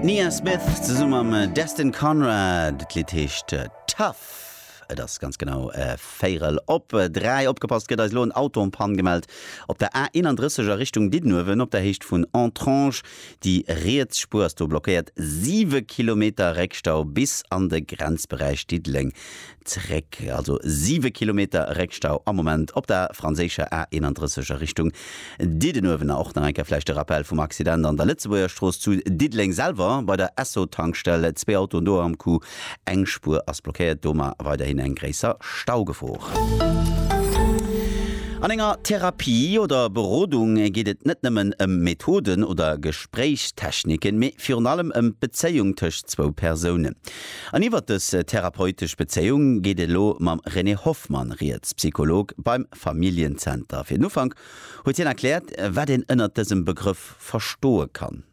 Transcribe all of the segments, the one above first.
D'Nia Smith zesumme mam Destin Conrad. D'Lidd heescht Tough. Et ass ganz genau véierel op dräi. Opgepasst, gëtt eis elo en Auto en Panne gemellt op der A 31 a Richtung Diddenuewen op der Héicht vun Entrange. Déi riets Spuer ass do blockéiert, siwe Kilometer Réckstau bis an de Grenzberäich Diddeleng. Zeréck, also 7 Kilometer Réckstau am Moment op der franséischer A 31 a Richtung Diddenuewen. A och nach eng Kéier vläicht de Rappell vum Accident an der Lëtzebuergerstrooss zu Diddeleng selwer bei der Esso-Tankstell. Zwee Autoen do am Coup, eng Spuer ass blockéiert, doma weiderhin eng gréisser Staugefor. An enger Therapie oder Berodung geet et net nëmmen ëm Methoden oder Gespréichstechniken, mee virun allem ëm d'Bezéiung tëscht zwou Persounen. An iwwert dës therapeutesch Bezéiung geet elo mam René Hoffmann rieds, Psycholog beim Familljenzenter. Fir den Ufank huet hien erkläert, wat een ënnert dësem Begrëff verstoe kann.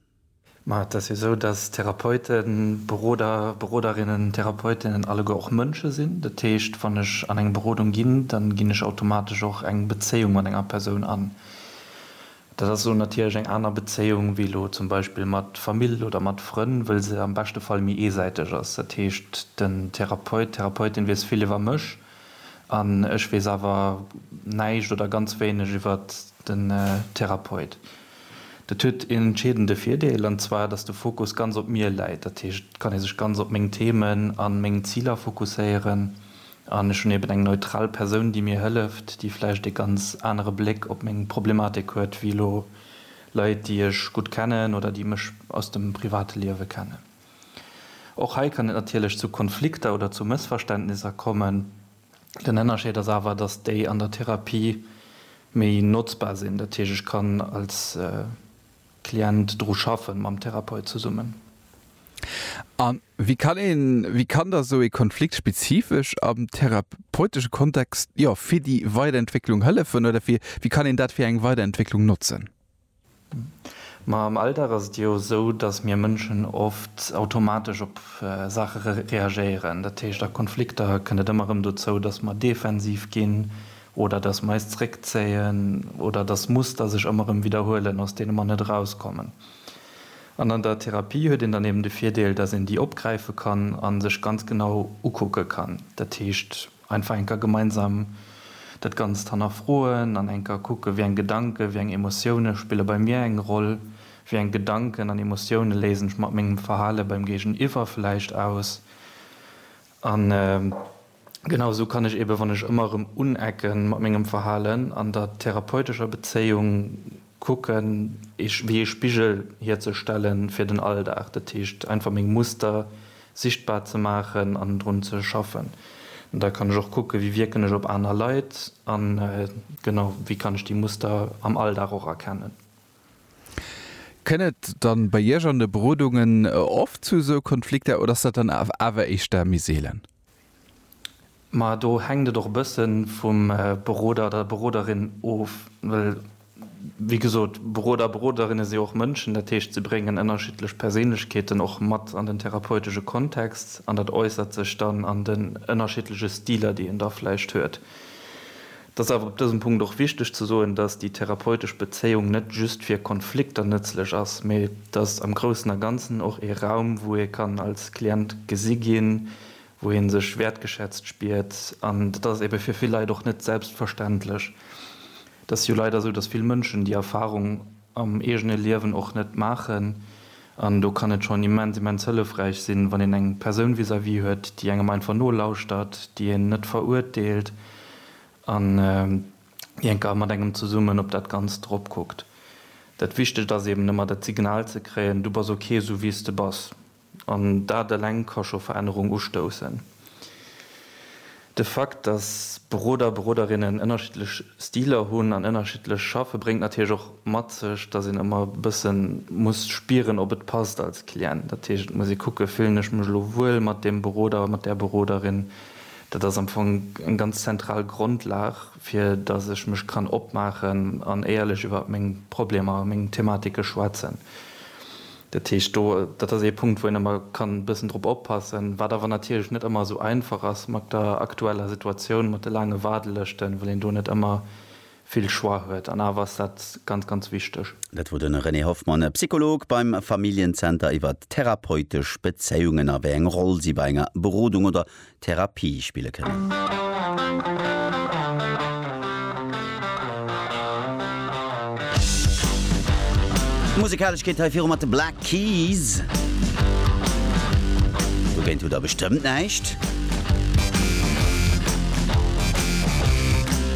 Ma et ass jo esou, datt Therapeuten, Beroder, Beroderinnen, Therapeutinnen alleguer och Mënsche sinn. Dat heescht, wann ech an eng Berodung ginn, da ginn ech automatesch och eng Bezéiung mat enger Persoun an. Dat ass elo natierlech eng aner Bezéiung wéi elo zum Beispill mat Famill oder mat Frënn, wëll se am beschte Fall méi eesäiteg ass. Dat heescht, den Therapeut, d'Therapeutin weess vill iwwer mech an ech weess awer näischt oder ganz wéineg iwwer den Therapeut. Dat huet een entscheedende Virdeel, an zwar, dass de Fokus ganz op mir läit. Dat heescht, et kann ee sech ganz op meng Themen a meng Ziler fokusséieren An ech hunn eben eng neutral Persoun, déi mir hëlleft, déi vläicht ee ganz anere Bléck op meng Problematik huet wéi elo Leit, déi ech gutt kennen oder déi mech aus dem private Liewe kennen. Och hei kann et natierlech zu Konflikter oder zu Mëssverständnisser kommen. Den Ënnerscheed ass awer, dass déi an der Therapie méi notzbar sinn. Dat heescht, ech kann als. Klient dru schaffen, mam Therapeut zesummen. A wéi kann een, wéi kann da sou ee Konflikt spezifesch am therapeutesche Kontext, jo, fir déi Weiderentwécklung hëllefen oder fir, wéi kann een dat fir eng Weiderentwécklung notzen? Ma am Alldag ass et jo sou, datt mir Mënschen oft automatesch op Saache reagéieren. Dat heescht, a Konflikter kënnt et ëmmer erëm dozou, datt mer defensiv ginn, oder dass mer eis zréckzéien oder dass Muster sech ëmmer erëm widderhuelen, aus deene mer net erauskommen. An an der Therapie huet een dann eben de Virdeel, dass een déi opgräife kann a sech ganz genau ukucke kann. Dat heescht, einfach enker gemeinsam dat Ganzt hannerfroen an enker kucken, wéi eng Gedanken, wéi eng Emotioune spille bei mir eng Roll, wéi eng Gedanken an Emotioune léisen ech mat mengem Verhale beim Géigeniwwer vläicht aus an. Genau esou kann ech eben, wann ech ëmmer erëm unecken mat mengem Verhalen, an der therapeutescher Bezéiung kucken, wéi ee Spigel hierzestellen fir den Alldag. Dat heescht, einfach meng Muster sichtbar ze maachen an drun ze schaffen. An da kann ech och kucken, wéi wierken ech op aner Leit a genau wéi kann ech déi Muster am Alldag och erkennen. Kënn et dann bei Iech an de Berodungen oft zu esou Konflikter oder ass dat dann awer éischter méi seelen? Ma do hänkt et och e bësse vum Beroder oder der Beroderin of, well, wéi gesot, Beroder a Beroderinne si och Mënschen, dat heescht, se bréngen ënnerschiddlech Perséinlechkeeten och mat an den therapeutesche Kontext an dat äussert sech dann an den ënnerschiddleche Stiler, déi een da vläicht huet. Et ass awer op dësem Punkt och wichteg ze soen, dass déi therapeutesch Bezéiung net just fir Konflikter nëtzlech ass, mä et ass am Groussen a Ganzen och ee Raum, wou ee kann als Klient gesi ginn, wou ee sech wäertgeschätzt spiert. An dat ass ebe fir vill Leit och net selbstverständlech. Et ass jo leider esou, dass vill Mënschen déi Erfahrung. am eegene Liewen och net maachen an do kann et schonn immens, immens hëllefräich sinn, wann een eng Persoun vis-à-vis huet, déi engem einfach nolauschtert, déi een net verurteelt an déi enker mat engem zesummen op dat Ganzt eropkuckt. Dat Wichtegt ass eben ëmmer dat Signal ze kréien, du bass ok, sou wéi s de bass. An dat eleng ka scho Verännerung ustoussen. De Fakt, dass Beroder, Beroderinnen ënnerschiddlech Stiler hunn an ënnerschiddlech schaffe bréngt natierlech och mat sech, dass een ëmmer e bësse muss spieren, ob et passt als Client. Dat heescht, et muss ee kucken, fillen ech mech elo wuel mat deem Beroder, mat där Beroderin. Dat ass am Fong eng ganz zentral Grondlag, fir dass ech mech kann opmaachen an éierlech iwwer meng Problemer, meng Thematike schwätzen. Dat heescht, do, dat ass ee Punkt, wou een ëmmer kann e bëssen drop oppassen, wat awer natierlech net ëmmer esou einfach ass mat der aktueller Situatioun, mat de laange Waardelëschten, well een do net ëmmer vill Choix huet. An awer ass dat ganz, ganz wichteg. Dat wor de René Hoffmann, Psycholog beim Familljen-Zenter, iwwert therapeutesch Bezéiungen a wéi eng Roll si bei enger Berodung oder Therapie spille kënnen. D'Musekalesch geet hei viru mat de Black Keys. Dogéint hutt der bestëmmt näischt.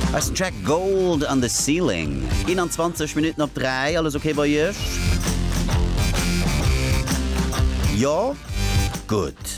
Hei ass den Track Gold an de Ceiling. 21 Minutten op 3. Alles ok bei Iech? Jo? Gutt.